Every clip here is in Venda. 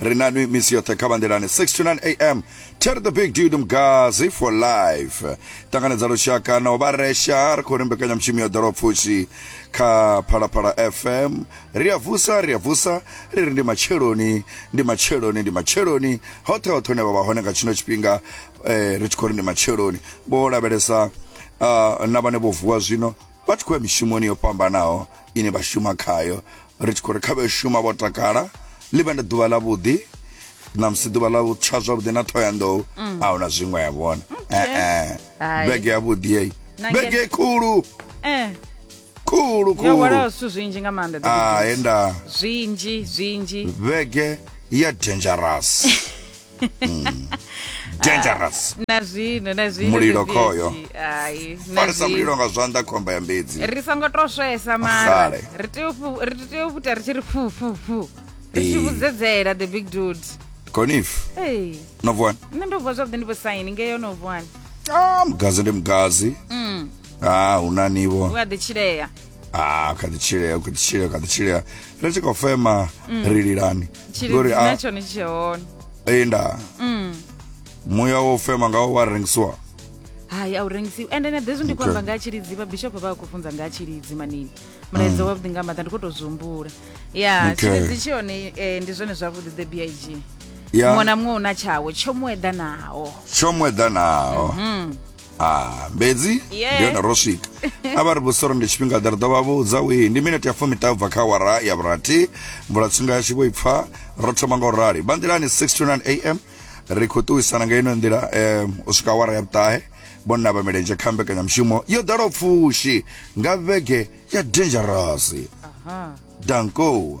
ri nanwi misi yoṱhe kha vhanḓilani 69 am ter the big dude mgazi for life ṱanganedza lushaka na u vha resha ri khou ri mbekanyamushumo ya ḓoropfushi kha phalaphala fm ri a vusa ri a vusa ri ri ndi matsheloni ndi matsheloni ndi matsheloni hoṱhe hoṱhe hune vha vha hone nga tshino tshifhinga eh, ri tshi khou ri ndi matsheloni vho lavhelesa uh, na vhane vho vuwa zwino vha tshi khou ya mishumoni yo fhambanaho ine vha shuma khayo ri tshi khou ri kha vhe shuma vho takala ḽi vhe ndi ḓuvha ḽa vhuḓi na musi ḓuvha ḽa tsha zwavhuḓi na thoyandou mm. a huna zwiṅwe ya vhona ee vhege ya vhuḓi eyi vhege khulu eh. khulu khuluwalaho zwithu zwinzhi nga maanḓa ah, enda zwinzhi zwinzhi vhege ya dangerous dangerous na zwino na zwino Mulilo Vivi khoyo. Edzi. Ai, na farisa zwino. mulilo nga zwanḓa khomba ya mbedzi ri songo to swesa mara Sale. ri tea u fu- ri tea u puta ri tshi ri fu fu fu ri tshi Eh. vhudzedzela the big dude conif Hey, no vuwani nṋe ndo vuwa zwavhuḓi ndi vho saini ngeyo no vuwani ah mugazi ndi mugazi Mm. ah huna nivo u a ḓi tshilea ah kha ḓi tshilea kha ḓi tshilea kha ḓi tshilea ri tshi khou fema ri lilani tshilidzi Ngori, ah. na tshone tshi tshe hone ee nda Mm. muya wo fema ngawo wa rengisiwa hayi a u rengisiwi ende na hezwi ndi khou Okay. amba nga ha tshilidzi vhabishopo vha vha khou funza nga ha tshilidzi manini mulaedza wavhuḓi nga maḓa ndi khou tou zwi humbula ya Okay. tshilidzi tshi hone eh, ndi zwone zwavhuḓi the big muṅwe ya na muṅwe u na tshawo tsho mu eḓanaho tsho mu eḓanaho ah mbedzi Yeah. ndi hone ro swika a vha ri vhusoro ndi tshifhinga ḓe ri ḓo vha vhudza wii ndi minete ya fumi tabva kha wara ya vhurathi mvula tsinga yashu vho i pfa ro thoma nga u rali vha nḓilani 629 am ri khou ṱuwisana nga ino nḓila em, u swika wara ya vhuṱahe vhonna vha milenzhe kha mbekanyamushumo yo ḓalaho pfushi nga vhege ya dangerous danko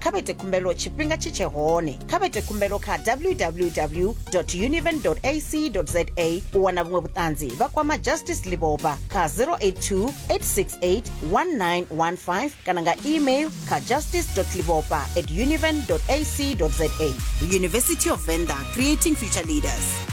kha vha ite khumbelo tshifhinga tshi tshe hone kha vha ite khumbelo kha www univen ac za u wana vhuṅwe vhuṱanzi vha kwama justice libopa kha 082 868 1915 kana nga email kha justice libopa at univen ac za university of venda creating future leaders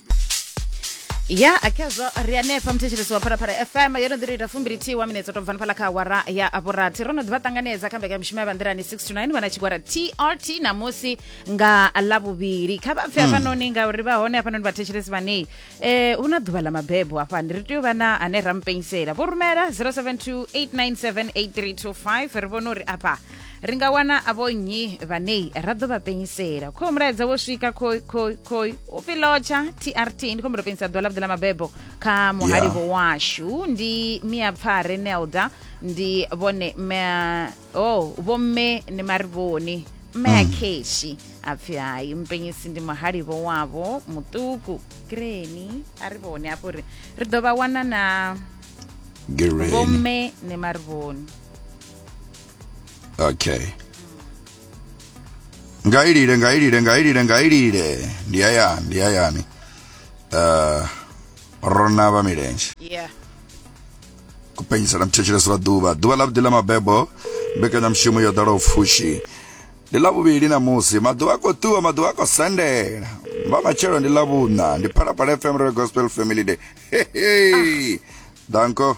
ya akhezwo ri hanefha muthetshelesi wa phalaphala fm yo no ḓi ri ita fumbilithihi wa minetse tou bvani phala kha awara ya vhurathi ro no ḓivha ṱanganedza kha mbekanyamushumo ya banḓirani 69 vhana tshigwara trt namusi nga ḽavhuvhili kha vha pfe hafhanoni ngauri vha hone hafhanoni vhathetshelesi vhanei eh hu na ḓuvha ḽa mabebo hafhani ri tea u vha na ane ra mupenyisela vho rumela 0728978325 ri vhone uri afha ri nga wana avho nnyi vhanei ra ḓo vha penyisela kho mulaedza wo swika khoi khoi khoi u pfi lotsha trt ndi khou mbulo penyisa ḓuvha ḽa vhuḓi ḽa mabebo kha muhalivo washu ndi mia pfare nelda ndi vhone o oh, vhomme ni marivhoni mme a keshi mm. a pfi hayi mpenyisi ndi muhalivo wavho muṱuku greni a ri vhone afho ri ri ḓo vha wana na vhomme ni marivhoni okay ngailile ngailile ngailile ngailile ndi ayani ndi ayani uh, rona vha milenzhe yeah kupenyisela mthetshelesi lwa ḓuvha ḓuvha ḽa vhuḓi ḽa mabebo mbekanyamushumo yo ḓalaho pfushi ndi ḽa vhuvhili na musi maḓuvha a khou ṱuwa maḓuvha a khou sendela vha matshelo ndi ḽa vhuṋa ndi phalaphala fm re gospel family day hehe danko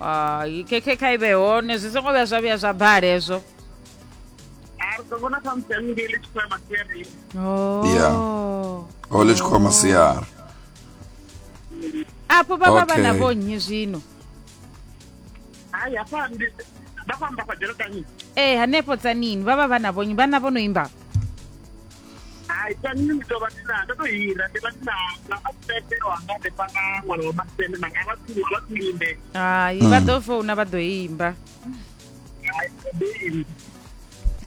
Ah, i khe khe kha i vhe hone zwi songo vhuya zwa vhuya zwa bala hezwo Yeah. Oh. o ḽi tshi khou ya masiari afho vha vha vha na Okay. vho nnyi zwino ee hanefho tsanini vha vha vha na vho nnyi vhana vho no imba hai sa nṋe ndi tou vha ndi na ndo tou hira ndi vha ndi na na masete wanga ndi fha na ṅwana wa masete manga a vha tsini vha tsini limbe hai vha ḓo founa vha ḓo imba hai ndi imi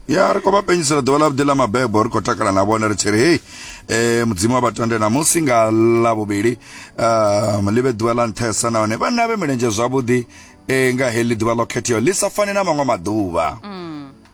ya ri khou vha penyisela ḓuvha ḽa vhuḓi ḽa mabebo ri khou takala na vhone ri tshi ri hei um mudzimu wa vhatande namusi nga ḽa vhuvhili um ḽi vhe ḓuvha ḽa nṱhesa nahone vhanna vhe milenzhe zwavhuḓi um nga heḽi ḓuvha ḽo khetheaho ḽi sa fani na maṅwe maḓuvha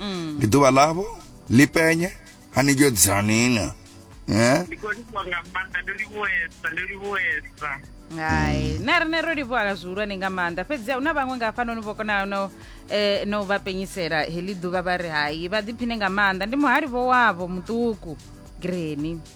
Mm. ndi ḓuvha ḽavho ḽi penye a ni yodzaniṅa eh? ndi khou livhuwa nga maanḓa ndo livhuwesa ndo livhuwesa hai na riṋe ro livhuwa zwihulwane nga maanḓa fhedzi hu na vhaṅwe nga hafhanoni vho konaho no eh, no vha penyisela heḽi ḓuvha vha ri hai vha ḓiphine nga maanḓa ndi muhali vho wavho muṱuku greni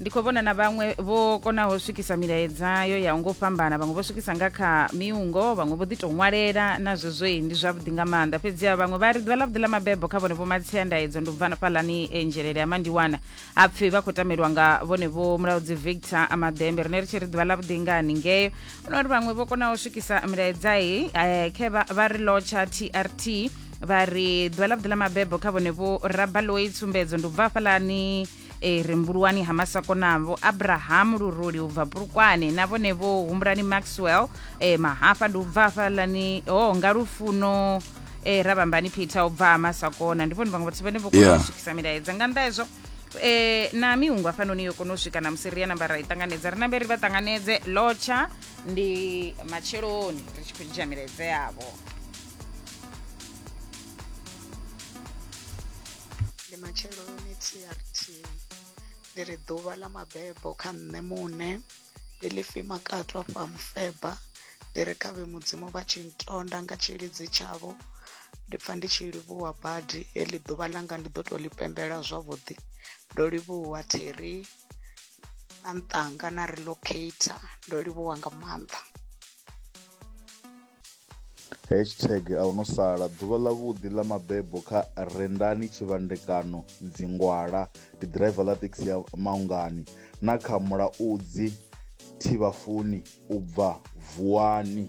ndi khou vhona na vhaṅwe vho konaho swikisa milaedza yo ya ngo fhambana vhaṅwe vho swikisa nga kha miungo vhaṅwe vho ḓi tou ṅwalela na zwezwoi ndi zwavhuḓi nga maanḓa fhedziha vhaṅwe vha ri ḓuvha ḽavhuḓi ḽa mabebo kha vhone vho matsia ndaedzo ndi ubva fhalani e nzhelele ya mandiwana ha pfhi vha khou tamelwa nga vhone vho mulaudzi victor amadembe rine ri tshi ri ḓuvha ḽavhuḓi nga haningeo ono ri vhaṅwe vho konaho swikisa milaedzai eh, khe vha ri lotsha trt vha ri ḓuvha ḽavhuḓi ḽa mabebo kha vhone vho rabaloyi tsumbedzo ndi ubva fhalani e ri mbuluwani ha masakona vho abrahamu luruli u bva pulukwane na vhone vho humbulani maxwell e mahafa ndi u bva hafhalani o oh, nga lufuno e ra vhambani peter u bva ha masakona ndi vhone vhaṅwe vhathu vhane vho kona yeah. u swikisa milaedza nga nnḓa hezwo e na miungu afhanoni yo kona u swika na musi ri ya namba ra i ṱanganedza ri nambe ri vha ṱanganedze lotsha ndi matsheloni ri tshi khou dzhia milaedza yavho ndi matsheloni trt ndi ri ḓuvha ḽa mabebo kha nṋe muṋe ndi ḽi fi makato afha mufeba ndi ri kha vhe mudzimu vha tshi ntonda nga tshilidzi tshavho ndi pfa ndi tshi livhuwa badi heḽi ḓuvha ḽanga ndi ḓo tou ḽi pembela zwavhuḓi ndo livhuwa theri na nṱanga na relocator ndo livhuwa nga maanḓa Hashtag a hu no sala ḓuvha ḽavhuḓi ḽa mabebo kha Rendani Tshivhandekano Dzingwala ndi ḓiraiva ḽa thekhisi ya Maungani na kha Mulaudzi Thivhafuni u bva Vuwani.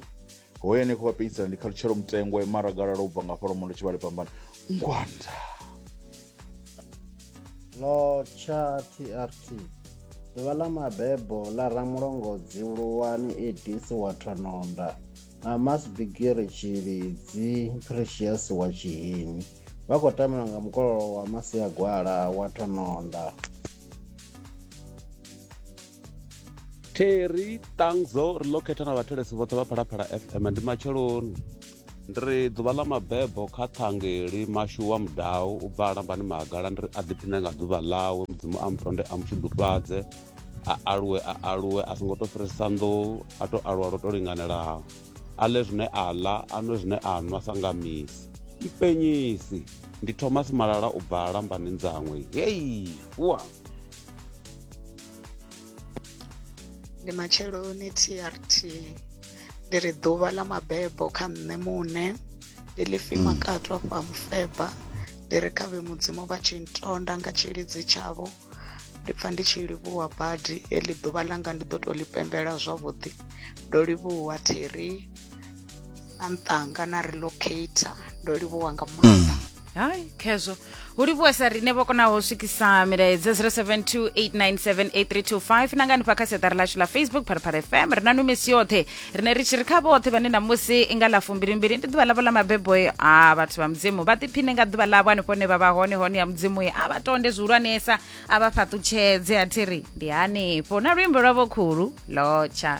Hoyu ane a khou vha penyisela ndi Khalutshelo Mutengwa, Maragalala u bva nga hafha Lwamondo Tshivhale Phambane, Ngwanda. Lotsha TRT Ḓuvha ḽa mabebo ḽa ramulongodzi Luwani Edis wa Thononda na Mas Bigiri Tshilidzi Precious wa Tshihimi vha khou tambela nga mukololo wa Masiagwala wa Thononda. terry tangzo ri ḽo khetha na vhathelesi vhoṱhe vha phalaphala fm ndi matsheloni ndi ri ḓuvha ḽa mabebo kha ṱhangeli mashu wa mudau u bva alambani magala ndi ri a ḓiphine nga ḓuvha ḽawe mudzimu a mutonde a mutshudufhadze a aluwe a aluwe a songo to fhirisa nḓou a to aluwa lwo to linganelaho a ḽe zwine a ḽa a nwe zwine a nwa sa nga misi ipenyisi ndi thomas malala u bva alambani ndzangwe hei wa ndi matsheloni trt ndi ri ḓuvha ḽa mabebo kha nṋe muṋe ndi ḽi fima mm. katwa fha mufeba ndi ri kha vhe mudzimu vha tshi ntonda nga tshilidzi tshavho ndi pfa ndi tshi livhuwa badi heḽi ḓuvha ḽanga ndi ḓo tou ḽi pembela zwavhuḓi ndo livhuwa theri na nṱanga na relocator ndo livhuwa nga maanḓa hayi khezwo hu livhuwe sa riṋe vho konaho u swikisa milaedza 0728978325 na nga hanefha kha siaṱari lashu la facebook phalaphala fm ri na no misi yoṱhe riṋe ri tshi ri kha vhoṱhe vhane namusi i nga ḽa fumbilimbili ndi ḓuvha ḽavho ḽa mabebo e a vhathu vha mudzimu vha ḓiphine nga ḓuvha ḽavho hanefho hune vha vha hone hone ya mudzimu e a vha tonde zwihulwanesa a vha fhaṱutshedze a thi ri ndi hanefho na luimbo lwavho khulu lotsha